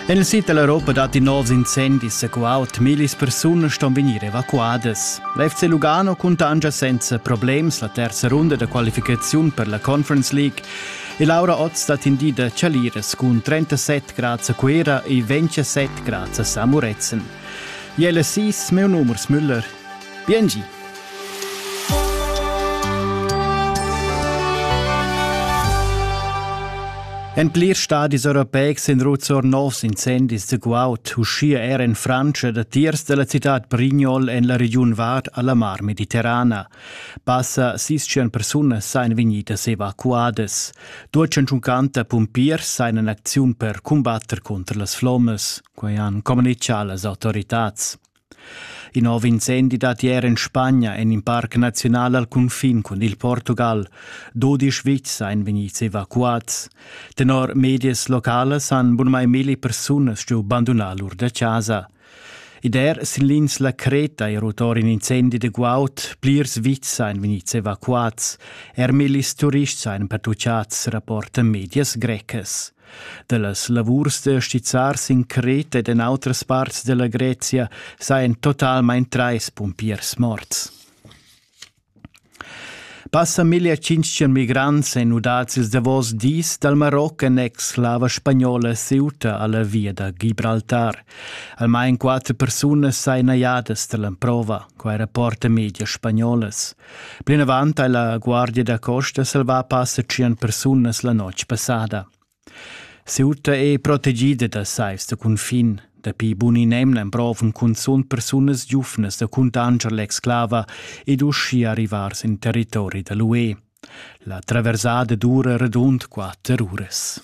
Nel sid dell'Europa datti novs incendis qua ut millis persunas ston vegnir evacuadas. L'FC Lugano cuntangia senza problems la terza runda da qualificaziun per la Conference League e Laura Oz dat in di da Chaliras cun 37 grads a Cuera e 27 grads a Samuretzen. Jelle 6, meu numers Müller. Biengi! En plirs stadis europeics sun ruts or novs incendis da guaud, uschia er en Frantscha, datiers da la citad Brignol en la regiun Vad a la Mar Mediterrana. Passa sis tschient persunas sain vegnidas evacuadas. Duo centuncanta pumpiers sain en acziun per cumbatter cunter las flommas, quai han communichà las autoritads. Il nov incendi dat ier en Spagna en in parc naziunal al cunfin cun il Portugal. Dudisch vitgs ein vegnids evacuats. Tenor medias localas han bunmai milli persunas giu bandunà lur da casa. Ed er sin l'ins la Creta è rotor in incendi de guaud, plirs vitgs ein vegnids evacuats, er millis turists ein pertucciats, rapportan medias grecas. Dallas lavurs da stizzar sin Creta ed en outras parts della Grezia sajan totalmein trais pumpiers morts. Passa 1500 migrants e nudats ils davos dis dal Maroc en ex-slava spagnola Ceuta alla via da Gibraltar. Almain quatter persunas sain najadas dall'emprova, quai rapporta media spagnolas. Plinavant ha la Guardia da costa salvà passa tschient persunas la notg passada. Ceuta è protegida da seis da cunfin. Dapi bun in emna emprovan cunzunt persunas giufnas da cuntanscher l'exclava ed uschia arrivar sin territori da l'UE. La traversada dura radund quatter uras.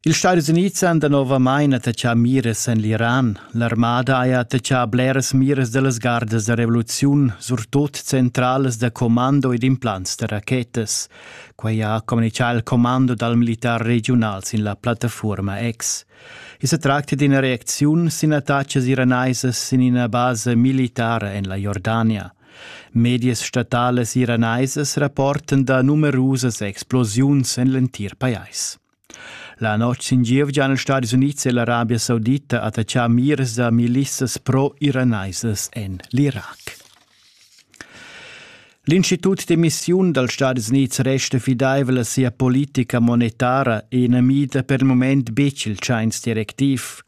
Ils Stadis Unids han danovamain attachà miras en l'Iran. L'armada haja attachà bleras miras da las gardas da revoluziun, surtut centralas da commando ed implants da rachetas. Quai ha communitgà il commando dal militar regiunal sin la plattafuorma X. I sa tracta d'ina reacziun sin attacas iranaisas sin ina basa militara en la Jordania. Medias statalas iranaisas rapportan da numerusas explosiuns en l'entir pajais. La notg sin gievgia han els Stadis Unids e l'Arabia Saudita attachà mirs da milissas pro-iranaisas en l'Irac. L'Institut d'emissiun dals Stadis Unids resta fidaivel a sia politica monetara e na mida per il moment betg il tschains directiv.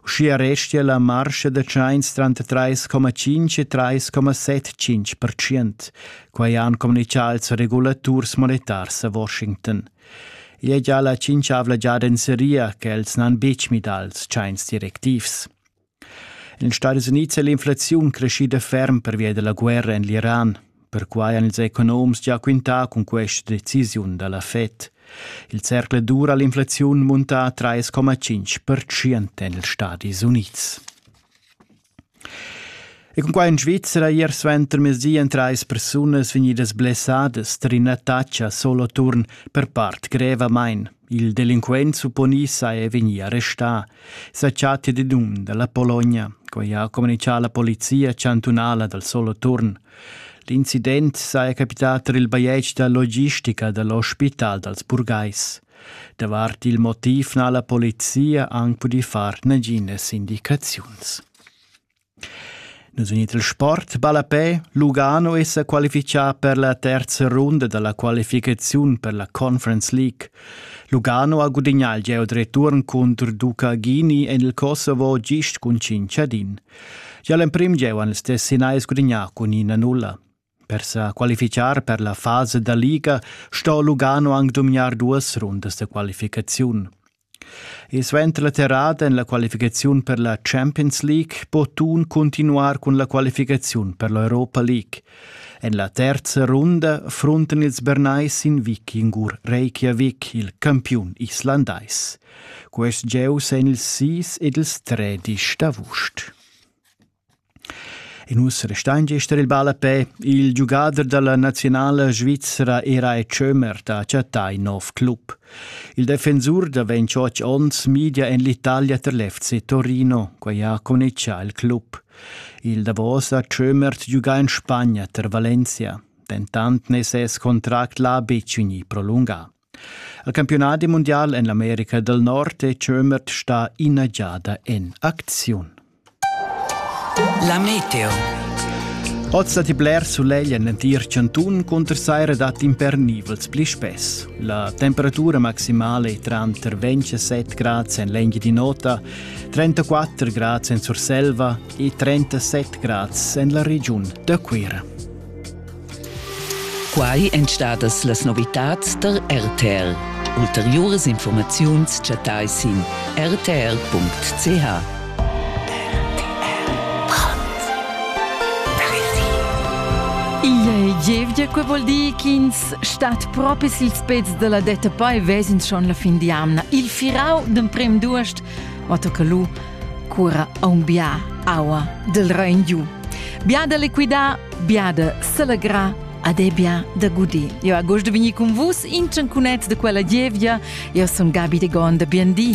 Uschia restia la marscha da tschains tranter 3,5 e 3,75 percent. Quai han communitgà ils regulaturs monetars a Washington. Igl ei gia la tschintschavla giada en seria che els n'han betg midà ils tschains directivs. En ils Stadis Unids è l'inflaziun creschida ferm pervia della guerra en l'Iran. Perquai han ils economs gia quintà cun questa decisiun da la Fed. Il cercle dura l'inflaziun munta 3,5% en ils Stadis Unids. E cun quai in Svizra ier suentermezdi èn trais persunas vegnidas blessadas tar ina tatscha Soloturn per part grevamain. Il delinquent supponì sa è vegnì arrestà. Sa chatta di dun dalla Polonia. Quai ha communichà la polizia chantunala dal Soloturn. L'incident saja capità tar il bajetg da logistica da l'ospital dals burgais. Davart il motiv n'ha la polizia anc pudì far naginas indicaziuns. Nus unit il sport ballapè Lugano è sa qualifichà per la terza runda da la qualificaziun per la Conference League. Lugano ha gudignà il gieu return contro Ducagini en il Kosovo gist cun 5 ad 1. Gia l'emprim gieu han ils Tessinais gudignà cun 1-0. Per sa qualifichar per la fasa da liga sto Lugano anc dumgnar duas rundas da qualificaziun. E suenter la terrada en la qualificaziun per la Champions League po Thun continuar cun la qualificaziun per l'Europa League. En la terza runda fronten ils Bernais in vikingur Reykjavik, il campiun islandais. Quest gieu en ils sis ed ils tredisch d'avust. E nus restein gester il bal a pe. Il giugader dalla nazionala svizra era e Schömer ha chattà in nov club. Il defensur da 28 onns media en l'Italia ter l'FC Torino, quei ha conneccia il club. Il Davos ha Schömer giugà in Spagna ter Valencia. Dentant ne ses contract l'ha betg vegnì prolungà. Il campiunadi mundial en l'America dal Nord è Schömert stà ina giada en acziun. La meteo. Oz datti bler sulegl en l'entir chantun cunter saira datti impernivels pli spess. La temperatura maximala è tranter 27 grads en l'engi di nota, 34 grads en Surselva e 37 grads en la regiun da Cuira. Quai èn stadas las novitads tar RTL. Ulteriuras informaziuns chattai sin rtl.ch. Gievgia, quei vuol dir ch'ins stat propi sils pezs della detta poi vesins schon la fin di amna. Il firau d'emprem duest, va tocca lu, cura aunc bia aua del Rhein giu. Bia da liquidar, bia da selegrar ed è bia da gudir. Eu agost de vegnir con vus in ciancunet de quella gievgia. Eu sun Gabi de Gonda, bien di.